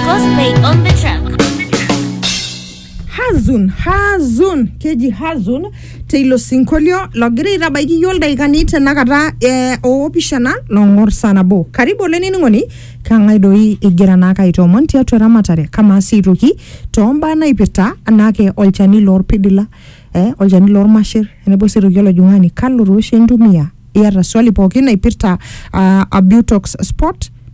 Cosplay on the track. hazun hazun keji hazun teilo sinkolio logira aitabaiki iyio ildaikani tenakata eh, oopishana long'or saa nabo karibu olainining'oni kang'ae doi igira naake aitoomon tiatua eramatare kamaa sii aitoki toombaa naipirta anaake olchani lorpidila eh, olchani lormasher tenebo sii aitoki olojung'ani kalo tooshi intumia iyata swali pookin naipirta uh, abutox spot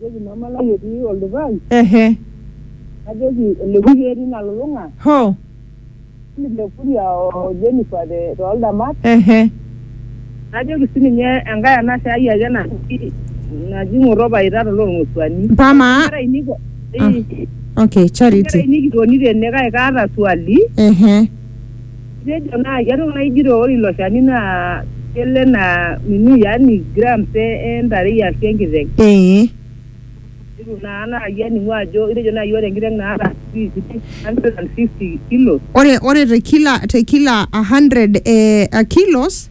Najoki mama lai etii oldupaai. Ehe. Najoki oleku keeta ina lulung'a. Hoo. Emily Lekuria o Jennifer te too ldamat. Ehe. Najoki sii ninye enkae anashe ai ake naji naji Ng'oto Paita to Lolng'osuani. Mpaka amaa. Nkera ainei po ii. Okay, Charity. Nkera ainei kitoni tene kake kaata swali. Ehe. Itejo naa ketok naa ijito ore ilo shani naa kelo enaa nini yani grams e, e ntarei ashu enkiteng. Ee. Itu naa naaji aning'u ajo itejo naaji ore enkiteng naata sijui sijui 150 kilos. Ore ore te kila te kila 100 eh kilos.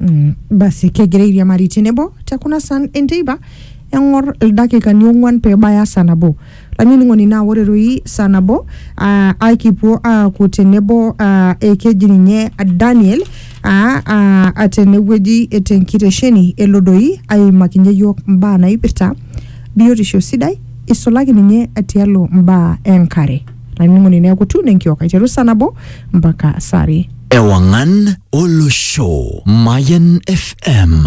Mm, basi kegira airiamari tenebo te kuna san enteipa eng'or ildakikani ong'uan pee ebaya saa nabo lainining'oni naa ore doi saa nabo aa aikipuo aaku tenebo aa ekeji ninye Daniel aa aa aa tenewueji tenkitesheni elo doi aimakinye iyiook mbaa naipirta biotisho sidai isulaki ninye tialo mbaa enkare. lainining'oni neaku tune enkiok aiteru saa nabo mpaka saa are Ewangan Olosho Mayan FM